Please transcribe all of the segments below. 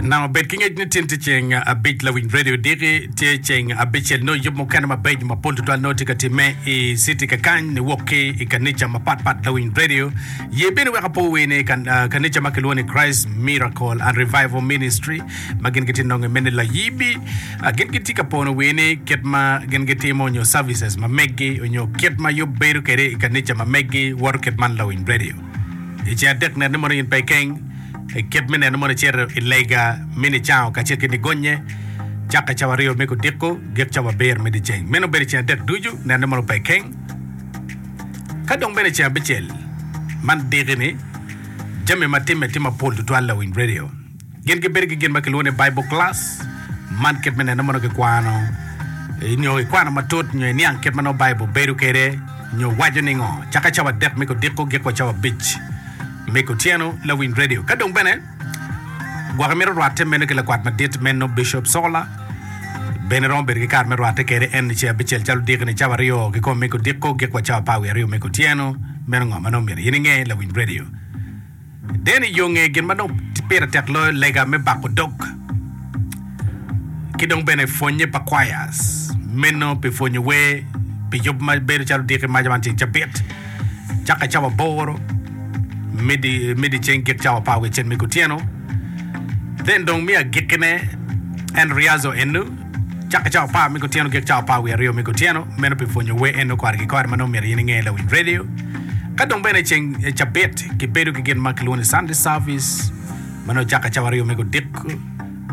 Nanga bed ki ngec ni tin tye ceng abic lawiny radio diki tye ceng abicel nongo yub mukene mabeco mapol tutwal nongo tye ka timme i city kakany niwok ki i kanica mapatpat lawiny radio ye bene weka po wer ni kan- ah, kanica ma kilwongo ni Christ Miracle and Revival Ministry ma gin gitye nongo mene layibi Ah, gin gitye ka pono wer ni kit ma gin gitimo nyo services ma meggi onyo kit ma yub bedo kede i kanica ma meggi woto kit man lawiny radio I ceng adek nene mono in pe ikeng, i kit me neno mono icito i lega me nicango kacel ki nigonye, cakke cawa aryo me kudiko, gik cawa abiro me dyeceng. Meno bedo i ceng adek ducu, nene mono pe ikeng. Ka dong bene i ceng abicel, man diki-ni, jami ma timme tye mapol tutwal lawiny redio. Gin gibedo ki gin ma kilwongo ni Bible Class. Man kit me neno mono kikwano nyo ikwano matut nyo iniang kit ma nongo Bible bedo kwede nyo waco ningo. Cake cawa adek me kodiko gik wa cawa abic me kotyeno. Lawiny Radio ka dong bene gwok imito rwate meno ki lakwat madit meno Bishop Sola bene romo bedo ki kare me rwate kwede en ni ce abicel calo diki ni cawa aryo kikomo me kodiko gik wa cawa apar wiye aryo me kotyeno. Meno ngo ma nongo myero in inge Lawiny Radio? Deno i yo nge gin ma dong pire tek loyo lega me bako dog ki dong bene pwonnye pa kwayas meno pi pwonyo wer pi yub ma bedo calo diki maco man ceng cabit caka cawa aboro me diceng gik cawa apar wicel me kutyeno then dong me agikine en riazo enu Cakke cawa apar me kutyeno gik cawa apar wiye aryo me kutyeno, meno pi pwonyo wer eno kare ki kare ma nongo myero in inge i lawiny redio. Ka dong bene ceng cabit kibedo ki gin ma kilwongo ni Sunday service ma nongo cakke cawa aryo me gudiko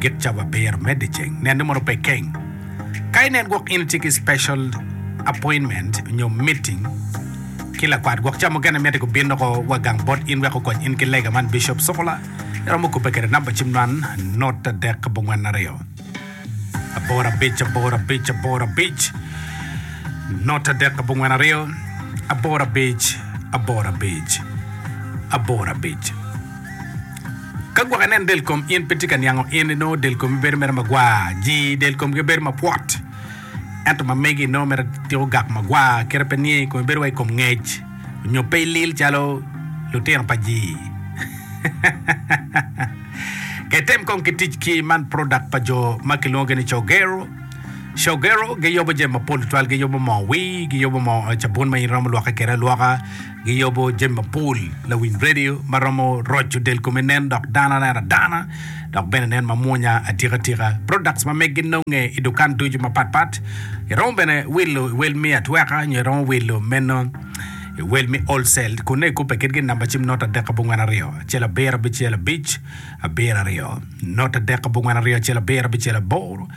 gik cawa abiro me dyeceng. Nenne mono pe keng. Ka inen gwok in itye ki special appointment nyo meeting ki lakwat gwok ca mukene mitte gubin doko wa gang bot in wek gukony in ki lega man Bishop Sukula iromo kubbe kede namba cim man not adek bongwen aryo. Aboro abic aboro abic aboro abic not adek abongwen aryo aboro abic aboro abic aboro abic ka gwok inen del kom in pe tye ka niango in ino del komi bedo mere magwar ji del komgi bedo mapwot ento ma megi ino mere tiko gak magwar kere pe niye komi bedo wa i kom ngec nyo pe ilil calo lutino pa ji Kitem kong ki tic ki man product pa jo ma kilwongo gi ni Cogero. Cogero giyubo jami mapol tutwal, giyubo moo wii, giyubo moo cabun ma in iromo lwokke kwede alwoka, giyubo jami mapol lawiny radio ma romo roco del kome nen dok dano nen adana dok bene nen mamwonya atika tika. Products ma megi nonge i dukan ducu mapatpat. Iromo bene wilo iwel me atweka nyo iromo wilo meno Iwel me Old Cell kun nongo ikubbe kitgi i namba cim not adek abongwen aryo acel abiro abicel abic abiro aryo not adek abongwen aryo acel abiro abicel aboro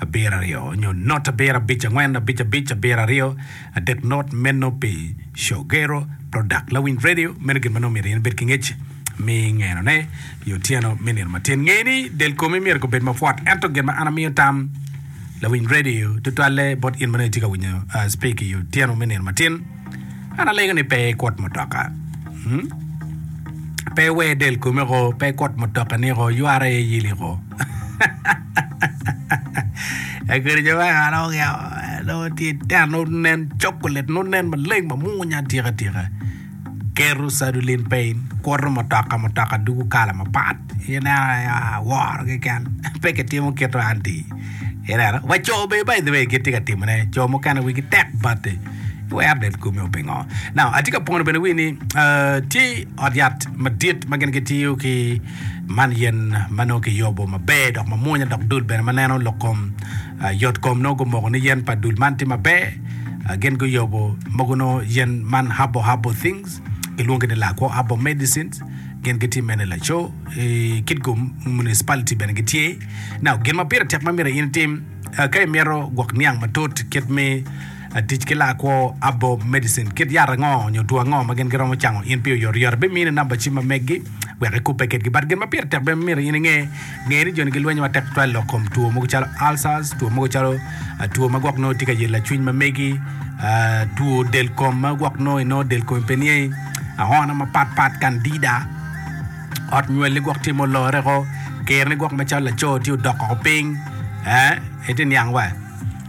abiro aryo nyo not abiro abic angwen abic abic abiro aryo adek not meno pi Shogero Product Lawiny Radio meno gin ma nongo myero in ibed ki ngec mi ngeno ne i otyeno me nino matin ngee ni del komi myero ko bed mapwot ento gin ma an amiyo tam Lawiny Radio tutwalle bot in ma nongo itye ka winyo uh, speak i otyeno me nino matin An alego ni pe ikut mutoka. Hmm? Pe iwer del kome ko, pe ikut mutoka ni ko, ywara iye yili ko. Akwede jo me kara ogya, nongo tye ten, nongo nen chocolate, nongo nen maleng mamunya atika tika. Keto sadulin pe in, kuto mutoka, mutoka dugu kala mapat. Ineno aye, ah, woro keken. Pe kitimo kito anti. Ineno, wa co be by the way gitye ka timone, co mukene wigi tek bati. iwera bed kumi o pingo now atye ka pwono bene wi ni uh, tye ot yat madit ma gin gitiyo ki man yen ma nongo kiyubo maber dok mamwonya dok dul bene ma neno lok kom uh, yot kom nongo gumoko ni yen pa dul man tye maber uh, gin guyubo mogo nongo yen man habo habo things kilwongi ni lakwo habo medicines gin gitye mene laco i kit go municipality bene gitye now gin ma pire tek ma myero in itim uh, ka imito gwok niang matut kit me Atic ki laa kwo, herbal medicine, kit yat ango nyo two ango ma gin giromo cango in pi oyotoyot? Abimini namba cim ma meggi wek ikubbe kitgi. But gin ma pire tek bene ma myero in inge, nge ni joni gilwenyo matek tutwal lok kom two mogo calo ulcers, two mogo calo two ma gwok nongo tye ka yelo lacwiny ma megi, two del kom ma gwok nongo inongo del komi pe niye, ahona mapat pat, candida, ot nywelli gwok tye ma olore woko, kerni gwok macalo laco tye odok woko piny, ee itye niang wa?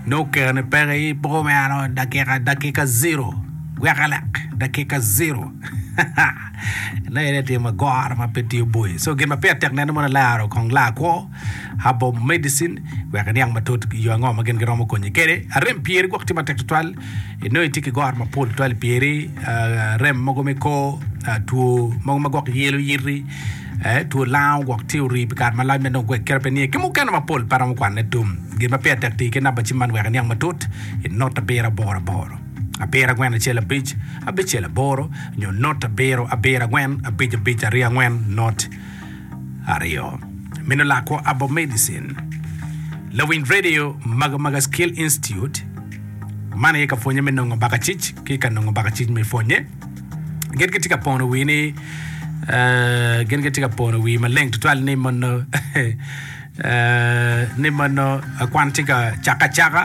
Nongo kare ni peke i poko me ano dakika dakika zero weka lek dakika zero na ene tye magoro ma pe tiyo boye so gin ma pire tek nene mono laro kong laa kwo habo medicine wek iniang matut yo ango ma gin giromo konyi kede arem pyeri gwok tye matek tutwal inongo itye ki goro mapol tutwal pyeri rem mogo me kor two mogo ma gwok yelo yiti Ee, two lango gwok tye orii pi kare malac ma dong gwek kit ma pe niye ki mukene mapol pe aromo kwanone tum. Gin ma pire tek tii ki namba cim man wek iniang matut, i not abiro aboro aboro, abiro agwen acel abic, abicel aboro, nyo not abiro abiro agwen, abic abic aryo angwen, not aryo. Mino lakwo abo medicine. Lawiny radio Maga Maga Skill Institute, Man aye ka pwonye me nongo baka cic ki ka nongo baka cic me pwonye. Gin gitye ka pono wii ni gin gitye ka pono wii maleng tutwal ni mono ni mono kwan tye ka caka acaka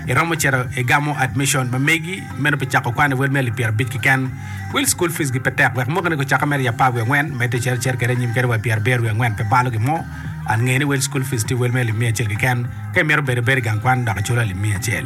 iromo cito igamo admission ma megi meno pi cako kwan iwel me alip pyera abic kiken wil school fees gi pe tek wek mukene gucaka mere i apar wiye angwen medde cito cer kede anyim kede wa i pyera abiro wiye angwen pe balo gimo an ngeni wel school fees tye wel me alip miya acel kiken ka imito bedo ibedo igang kwan dok iculo alip miya acel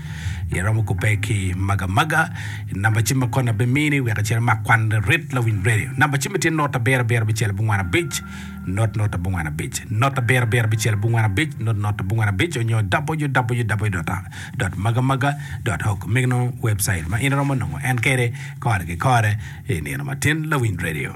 Iromo kubbe ki maga maga i namba cim ma koni abimini wek icit imak kwan rit lawiny redio. Namba cim-mi tye not abiro abiro abicel abongwen abic, not not abongwen abic, not abiro abiro abicel abongwen abic, not not abongwen abic onyo www.magamaga.org me nongo webcait ma in iromo nongo en kede kore ki kore i nino matin lawiny redio.